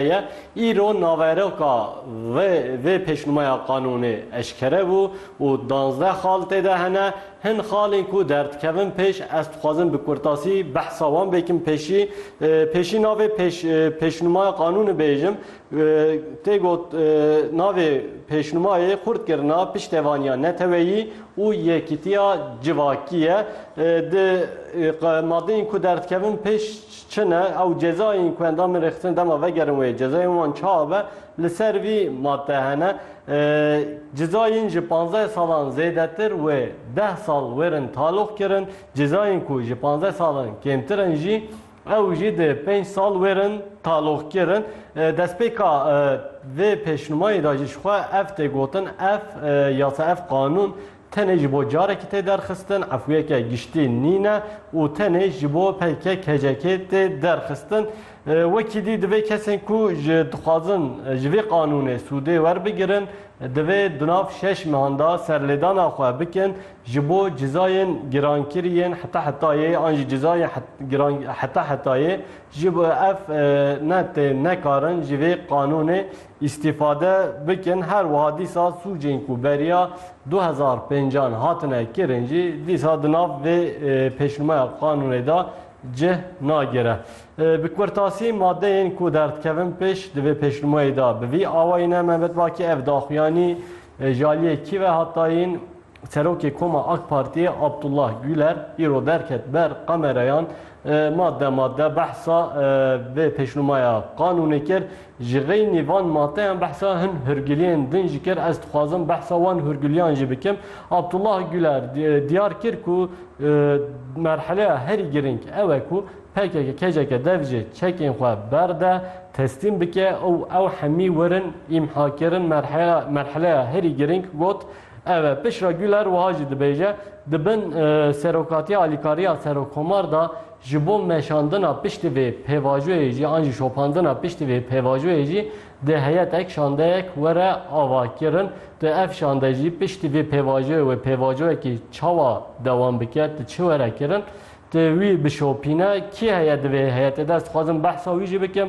ye. Îro naveroka vê vê pêşnûmeya qanûnê eşkere bû û danzdeh xal tê de hene. Hin xalên ku derdikevin pêş, ez dixwazim bi kurtasî behsa wan bikim. Pêşî pêşî navê pêş pêşnûmaya qanûnê bêjim. Tê got navê pêşnûmayê xurtkirina piştevaniya neteweyî û yekîtiya civakî ye. Di madeyên ku derdikevin pêş, Çin e, ew cezayên ku endamên rêxistinê dema vegerin wê cezayên wan ça be, li ser vî madde hene. Cezayên ji panzdeh salan zêdetir wê deh sal wêrin taloq kirin, cezayên ku ji panzdeh salan kêmtir in jî ew jî di pênc sal wêrin taloq kirin. Destpêka vê pêşnûmayê de jî ji xwe ev tê gotin, ev yasa, ev qanûn Tenê ji bo carekî tê derxistin, efûyeke giştî nîne û tenê ji bo PKK-KCK'ê tê derxistin. Wekî dî divê kesên ku ji dixwazin ji vê qanûnê sûdê werbigirin, divê di nav şeş mehan de serlêdana xwe bikin ji bo cizayên girankirî yên heta hetayê an jî cizayên heta hetayê ji bo ev ne tê nekarin ji vê qanûnê îstîfade bikin, her wiha dîsa sûcên ku beriya du hezar û pênc an hatine kirin jî dîsa di nav vê pêşnûmeya qanûnê de cih nagire. Bi kurtasî madeyên ku derdikevin pêş di vê pêşnûmeyê de bi vî awayî ne, Mehmet Baki ev daxuyanî ji aliyê kî ve hat dayîn? Serokê Koma AK Partiyê Abdullah Güler îro derket ber kamerayan madde madde behsa vê pêşnûmaya qanûnê kir. Ji xeynî van madeyan behsa hin hûrgiliyên din jî kir. Ez dixwazim behsa wan hûrgiliyan jî bikim. Abdullah Güler diyar kir ku merheleya herî girîng ew e ku pkk keceke dev jê çekên xwe berde, teslîm bike û ew hemî werin îmhakirin. Merheleya herî girîng got. Ev e, piştre Güler wiha jî dibêje, Di bin serokatiya alîkariya serokkomar de ji bo meşandina piştî vê pêvajoyê jî an jî şopandina piştî vê pêvajoyê jî di heyetek şandeyek were avakirin. Tu ev şande jî piştî vê pêvajoyê wê pêvajoyekî çawa dewam bike, tu çi were kirin? Tu wî bişopîne, kî heye di vê heyetê de? Ez dixwazim behsa wî jî bikim.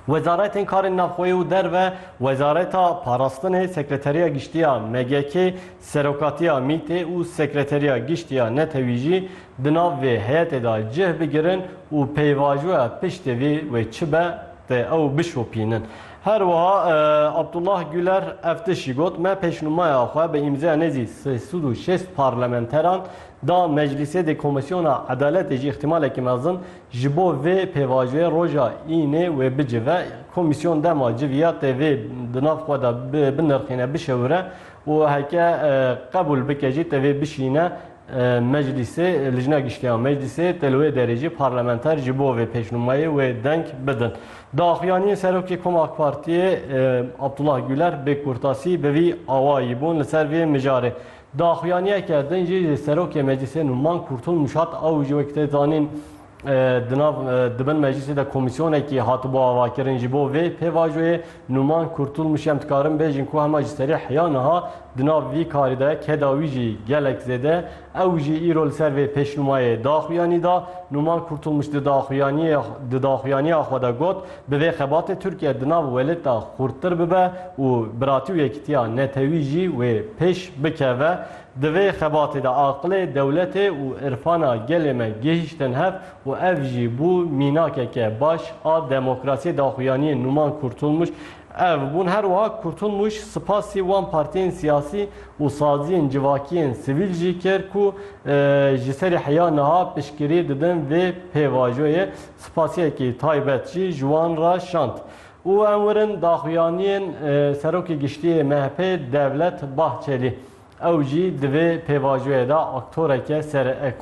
Wezaretên Karên Navxweyî û Derve, Wezareta Parastinê, Sekreteriya Giştî ya MGK'ê, Serokatiya MĪT'ê û Sekreteriya Giştî ya Netewî jî di nav vê heyetê de cih bigirin û pêvajoya piştê vî wê çi be tê ew bişopînin. Her wiha Abdullah Guler ev tişt jî got, Me pêşnûmaya xwe bi îmzeya nêzî sê sed û şêst parlamenteran da meclîsê dê komîsyona edaletê jî îhtimalekî mezin Ji bo vê pêvajoyê roja Înê wê bicive, komîsyon dema civiya tê vê di nav xwe de binirxîne, bişewire û heke qebûl bike jî tê vê bişîne meclîsê, Lijna Giştî ya Meclîsê tê li wê derê jî parlamenter ji bo vê pêşnûmeyê wê deng bidin. Di axuyaniyê Serokê Koma AK Partiyê Abdullah Guler bê kurtasî bi vî awayî bûn li ser vê mijarê. Daxuyaniyeke din jî Serokê Meclîsê Numan Kurtun Mûşat a û jî wek tê zanîn di nav di bin meclîsê de komîsyonekî hatibû avakirin ji bo vê pêvajoyê. Numan Kurtulmûş em dikarin bêjin ku hema ji serî heya niha di nav vî karî de keda wî jî gelek zêde ew jî îro li ser vê pêşnûmayê daxuyanî da. Numan Kurtulmûş di daxuyaniya xwe de got, Bi vê xebatê Tirkiye di nav welêt de xurttir bibe û biratî û yekîtiya netewî jî wê pêş bikeve. Di vê xebatê de aqilê dewletê û irfana gelê me gihîştin hev û ev jî bû mînakeke baş a demokrasiyê daxuyaniyê Numan Kurtulmuş. Ev bûn her wiha Kurtulmuş spasî wan partiyên siyasî û saziyên civakiyên sivîl jî kir ku ji serî heya niha piştgirî didin vê pêvajoyê. Spasiyekî taybet jî ji wan re şand û em werin daxuyaniyên Serokê Giştîyê MHP'ê Devlet Bahçelî. Ew jî di vê pêvajoyê de aktoreke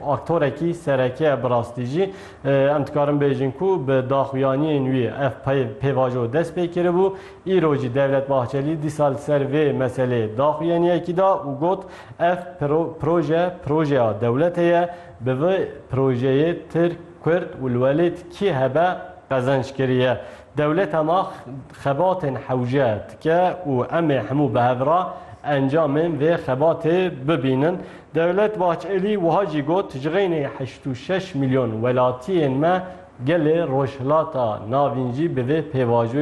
aktorekî sereke ye. Bi rastî jî em dikarin bêjin ku bi daxuyaniyên wî ev pêvajo dest pê kiribû. Îro jî Devlet Bahçelî dîsa li ser vê meseleyê daxuyaniyekî da û got, Ev proje projeya dewletê ye. Bi vê projeyê Tirk, Kurd û li welêt kî hebe qezenc kiriye. Dewleta ma xebatên hewce dike û em ê hemû bi hev re encamên vê xebatê bibînin. Dewlet Bahçelî wiha jî got, Ji xeynê heşt û şeş milyon welatiyên me gelê Rojhilata Navîn jî bi vê pêvajoyê